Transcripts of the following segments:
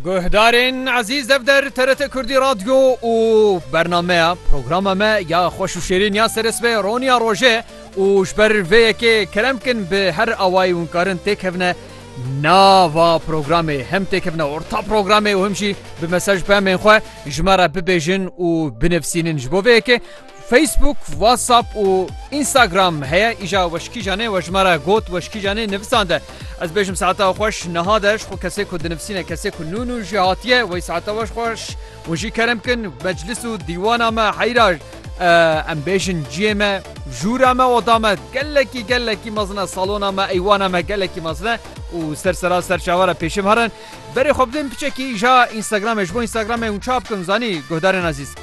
Guhdarên ezîz ev der TRT Kurdî Radyo û bernameya programa me ya xweş û şêrîn ya seres ve Roniya Roje û ji ber vê yekê kerem bikin bi her awayî hûn karin têkevne nava programê hem têkevne orta programê û him jî bi mesaj pemên xwe ji me re bibêjin û binivîsînin ji bo vê yekê Facebook, WhatsApp û Instagram heye îja weşkîjan e we ji me re got weşkîjan e nivisan de. Ez bêjim saeta xweş niha de ji xwe kesê ku dinivisîne kesê ku nû nû jî hatiye wey saeta weş xweş û jî kerem kin meclis û dîwana me heyra em bêjin ciyê me jûra me oda me gelekî gelekî mezin e salona me eywana me gelekî mezin e û ser sera ser çavara pêşim herin Berê xwe bidin piçekî ja Instagramê ji bo Instagramê hûn çap bikin zanî guhdarên ezîz.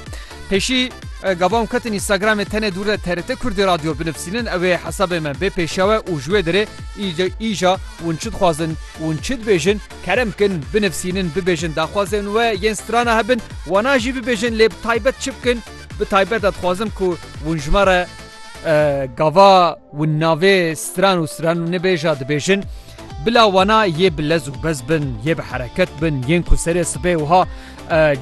Pêşî gava hûn ketin Instagramê tenê dûr de TRT Kurdî Radyo binivîsînin ew ê hesabê me bê pêşewe û ji wê derê îja hûn çi dixwazin hûn çi dibêjin kerem bikin binivîsînin bibêjin daxwazên we yên strana hebin wana jî bibêjin lê bi taybet çi bikin bi taybet de dixwazim ku hûn ji me re gava hûn navê stran û stranû nibêja dibêjin. Bila wana yê bi lez û bez bin, yê bi hereket bin, yên ku serê sibê wiha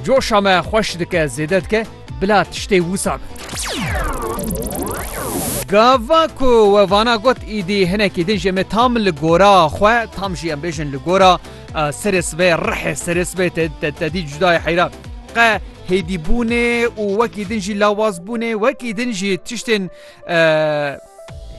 coşa me xweş dike, zêde dike, bila tiştê wisa be. Gava ku we vana got îdî hinekî din jê me tam li gora xwe, tam jî em bêjin li gora serê sibê, rihê serê sibê te dî cuda ye heyran. Qe hêdîbûnê û wekî din jî lawazbûnê, wekî din jî tiştên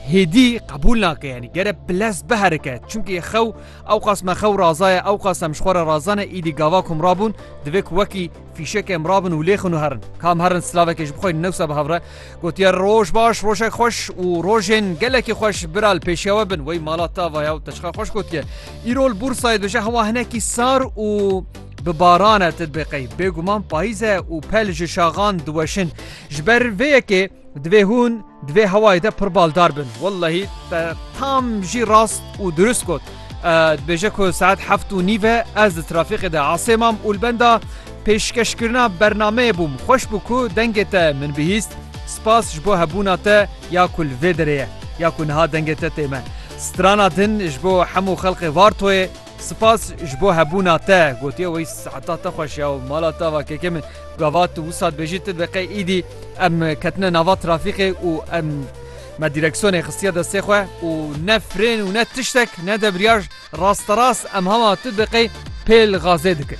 hêdî qebûl nake yanî gere piles biherike çunkî xew ew qas me xew razaye ew qas em ji xwe re razane îdî gava kum rabûn divê ku wekî fîşek em rabin û lêxin û herin kam herin slavekê ji bixwe newsa bi hevre gotiye roj baş rojek xweş û rojên gelekî xweş biral pêşewe bin wey mala tavaya û teşxa xweş gotiye îrol bûrsayê dije hewa hinekî sar û bi barane tedbêqey bêguman payîze û pel ji şaxan diweşin ji ber vê yekê Divê hûn di vê hewayê de pir baldar bin. Wellehî te tam jî rast û dirust got. Dibêje ku saet heft û nîve ez di trafîqê de asê mam û li benda pêşkeşkirina bernameyê bûm. Xweş bû ku dengê te min bihîst. Spas ji bo hebûna te ya ku li vê derê ye ya ku niha dengê te tê me. Strana din ji bo hemû xelkê Vartoyê. Spas ji bo hebûna te gotiye wê seheta te xweş ya û mala te va keke min gava tu wisa dibêjî ti de qey îdî em ketine nava trafîqê û em me dîreksiyonê xistiye destê xwe û ne frên û ne tiştek ne debriyaj rasterast em hema tu de qey pêl gazê dikir.